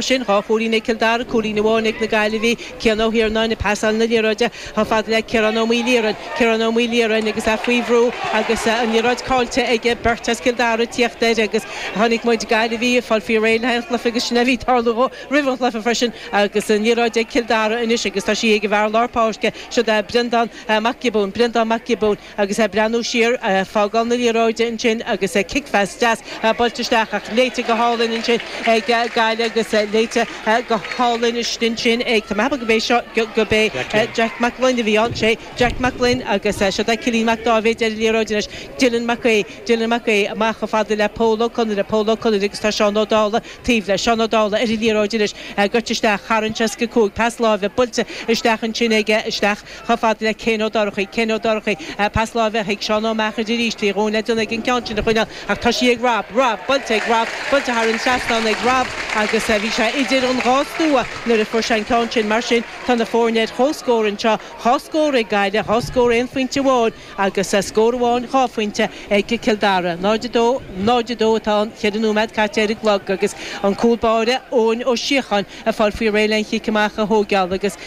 sin, dhá chúilín ag Cill Dara, cúilín amháin ag na Gaillimhigh, Cian Ó hIarnáin ag pasáil na liathróide chomh fada le Ciarán Ó Maoilchiaráin, Ciarán Ó Maoilchiaráin agus é faoi bhrú agus an liathróid caillte ag beirt as Cill Dara ag tíocht air agus chonaic muid Gaillimhigh ag fáil faoi réir le haghaidh an chluiche agus sin a bhí tarlú dhó roimh an chluiche freisin agus an liathróid ag Cill Dara anois agus tá sí ag an bhfear lár páirce, siod é Breandán Mac Giobúin, Breandán Mac Giobúin. Agus é breathnú siar, fágáil na liathróide ansin agus cicphas deas buailte isteach ach léite go hálainn ansin ag Gaillimh agus léite go hálainn istigh ansin ag, tá mé cheapadh gob é seo, gob é Jeaic Mac Fhloinn a bhí ann, sé Jeaic Mac Fhloinn agus siod é Cillín Mac Dáibhéid ar an liathróid anois, Dylan Mac Aoidh, Dylan Mac Aoidh amach chomh fada le Pól Ó Conaire, Pól Ó Conaire agus tá Seán Ó Dálaigh taobh leis, Seán Ó Dálaigh ar an liathróid anois, goil isteach, tharraingt as go cúig, pas láimhe buailte isteach ansin ag, isteach. Chomh fada le Céin Ó Dorchaí. Céin Ó Dorchaí. Pas láimhe chuig Seán Ó Meachair arís. Bhí a dhóthain le déanamh aige an ceann sin a choinneáil ach tá sí ag Rob. Rob! Buailte ag Rob! Buailte thar an trasnán ag Rob agus bhí sé idir an dhá stua nuair a fuair sé an ceann sin. Mar sin, tá na foirne ar chomhscór anseo. Dhá scór ag Gaillimh, dhá scór aon phointe amháin agus scór amháin dhá phointe ag Cill Dara. 0-2, 0-2 atá ann, ceithre nóiméad caite ar an gclog agus an cúl báire, Eoin Ó Síocháin, ag fáil faoi réir le an chic amach a thóigeáil agus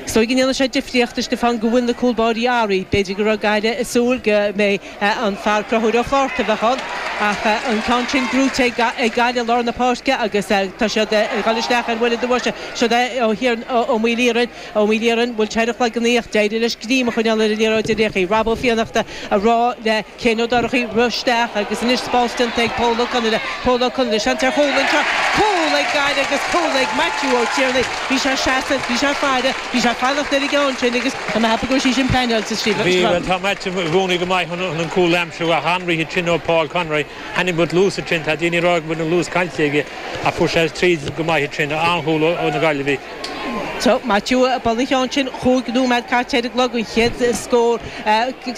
is dóigh go ndéanann sé difríocht, a Stiofáin, go bhfuil na cúl báirí athraithe. B'fhéidir go raibh Gaillimh ag súil go mbeidh an fear Conchúr Ó Flatharta a bheadh ann ach an ceann sin gnóite ag Gaillimh i lár na páirce agus tá siad ag dul isteach ar bhuille do bhoise. Siod é Ó hIarnáin, Ó Maoilchiaráin. Ó Maoilchiaráin, Bhuail teirreach lag an oích'. D'éirigh leis greim a choinneáil ar an liathróid díreach. Rob Ó Fiannachta a rá le Céin Ó Dorchaí rith isteach agus anois spás déanta ag Pól Ó Conaire. Pól Ó Conaire, Seans ar chúl anseo. Cúl ag Gaillimh agus cúl ag Maitiú Ó Tiarnaigh. Bhí sé seasamh, bhí sé faire, bhí sé fanacht ar an gceann sin agus tá mé cheapadh go raibh sí sin pleaineáilte, Stephen. Tá Maitiú i gcónaí go maith chun an cúl aimsiú ach an-rith ansin ó Paul Conroy. Chonaic muid luas ansin, tá daoine ag rá go bhfuil an luas caillte aige ach fuair sé tríd go maith ansin. An-chúl ó na Gaillimhigh. Maitiú ag bualadh an cheann sin, cúig nóiméad caite ar an gclog, an chéad scór,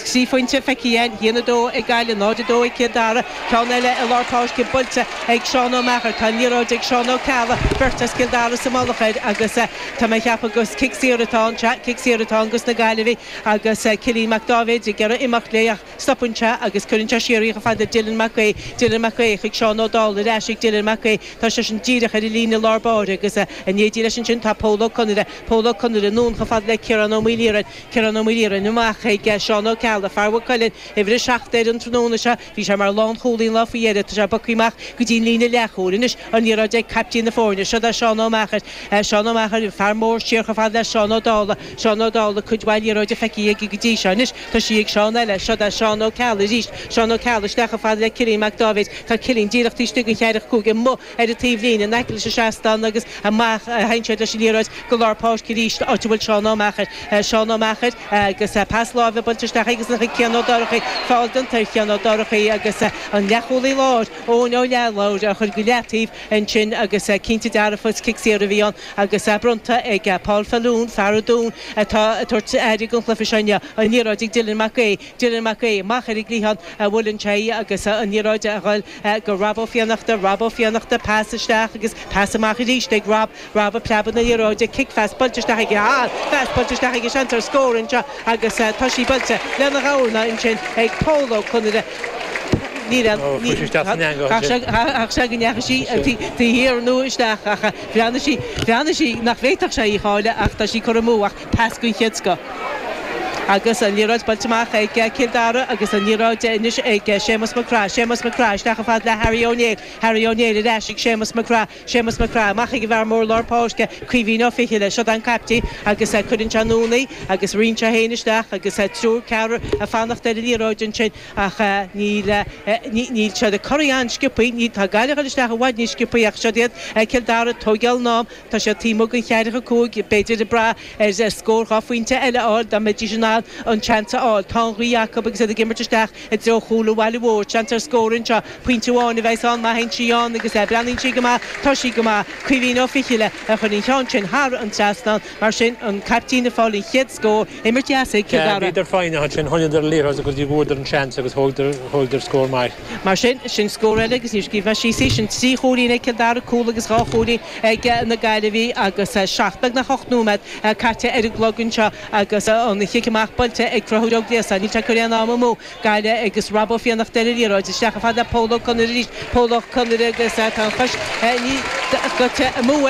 trí phointe feicthe againn, 1-2 ag Gaillimh, 0-2 ag Cill Dara. Ceann eile i lár páirce buailte ag Seán Ó Meachair. Tá an liathróid ag Seán Ó Ceallaigh, beirt as Cill Dara sa mullach air agus tá mé ag ceapadh gur cic saor atá ann, sea, cic saor atá ann dos na Gaillimhigh agus Cillín Mac Dáibhéid ag iarraidh imeacht léi ach. Stopann sé agus cuireann sé siar í chomh fada le Dylan Mac Aoidh, Dylan Mac Aoidh chuig Seán Ó Dálaigh, ar ais chuig Dylan Mac Aoidh, tá seisean díreach ar an líne lár báire agus in éindí leis ansin tá Pól Ó Conaire, Pól Ó Conaire anonn chomh fada le Ciarán Ó Maoilchiaráin, Ciarán Ó Maoilchiaráin amach chuig Seán Ó Ceallaigh, fear Mhaigh Cuilinn, uimhir a seacht air an tráthnóna seo, bhí sé mar lánchúlaí an lá faoi dheireadh, tá sé ag bogadh amach go dtí an líne leathchúil anois, an liathróid ag caiptín na foirne, siod é Seán Ó Meachair, Seán Ó Meachair, fear mór, siar chomh fada le Seán Ó Dálaigh, Seán Ó Dálaigh, cuid mhaith liathróide feicthe aige go dtí seo anois, Tá sí ag Seán eile. Siod é Seán Ó Ceallaigh arís. Seán Ó Ceallaigh, isteach a fhad le Cillín Mac Dáibhéid. Tá Cillín díreach taobh istigh den cheathracha cúig, amuigh ar an taobh linn, in aice leis an seastán agus amach, theann siad leis an liathróid go lár páirce arís, áit a bhfuil Seán Ó Meachair. Seán Ó Meachair agus pas láimhe buailte isteach aigesan chuig Cian Ó Dorchaí. Feall déanta ar Chian Ó Dorchaí agus an leathchúlaí láir, Eoin Ó Leathlobhair, á chur go leataobh ansin agus cinnte dearfa is cic saor a bhí ann. agus é bronnta ag Paul Faloon, fear an Dúin atá ag tabhairt aire don chluiche seo inniu. An liathróid ag Dylan Mac Aoidh, Dylan Mac Aoidh amach ar an gcliathán, a bhuaileann sé í agus an liathróid ag goil go Rob Ó Fiannachta, Rob Ó Fiannachta, pas isteach agus pas amach arís ag Rob, Rob ag preabadh na liathróide, cic phas buailte isteach aige, an-phas buailte isteach aige, seans ar scór anseo agus tá sí buailte lena dhorna ansin ag Pól Ó Conaire, níl aon ní, chaithfeadh sé go ndeachaigh sí taobh thiar nó isteach ach. Bhreathnaigh sí, bhreathnaigh sí nach bhféadfadh sé í a chailleadh ach tá sí curtha amú ach pas den chéad scoth. Agus an liathróid buailte amach ag Cill Dara agus an liathróid anois ag Séamus Mac Craith, Séamus Mac Craith isteach a fhad le Harry Ó Néill, Harry Ó Néill ar ais ag Séamus Mac Craith, Séamus Mac Craith amach ag an bhfear mór lár páirce, Caoimhín Ó Fichille, siod é an caiptín agus cuireann sé anonn í agus ritheann sé féin isteach agus triúr, ceathrar ag fanacht ar an liathróid ansin. Ach níl siad ag corraí an-sciobthaí, níl, tá Gaillimh ag dul isteach i bhfad níos sciobthaí ach siod iad, Cill Dara, ag tógáil a n-am, tá siad taobh amuigh den cheathracha cúig, b'fhéidir ag brath ar scór dhá phointe eile a fháil dá mbeidís in ann an seans a fháil. Tá an ghaoth acu agus iad ag imirt isteach i dtreo chúl an bhaile mhóir, seans ar scór anseo, pointe amháin a bheas ann má théann sí ann agus breathnaíonn sí go maith, tá sí go maith, Caoimhín Ó Fichille a chuir an ceann sin thar an trasnán, mar sin an caiptín ag fáil an chéad scór, Imirt dheas ag Cill Dara. Bhíodar foighneach ansin, choinníodar an liathróid go dtí go bhfuaireadar an seans agus thógadar scór maith. Mar sin, sin scór eile agus níor scríobh mé síos í. Sin trí chúilín ag Cill Dara, cúl agus dhá chúilín ag na Gaillimhigh agus seacht, beagnach ocht nóiméad caite ar an gclog anseo agus an chic amach buailte ag Conchúr Ó Gliasáin. Níl sé ag cur aon am amú. Gaillimh agus Rob Ó Fiannachta ar an liathróid. Isteach a fhad le Pól Ó Conaire arís. Pól Ó Conaire agus tá an chois níos gortaithe amú air.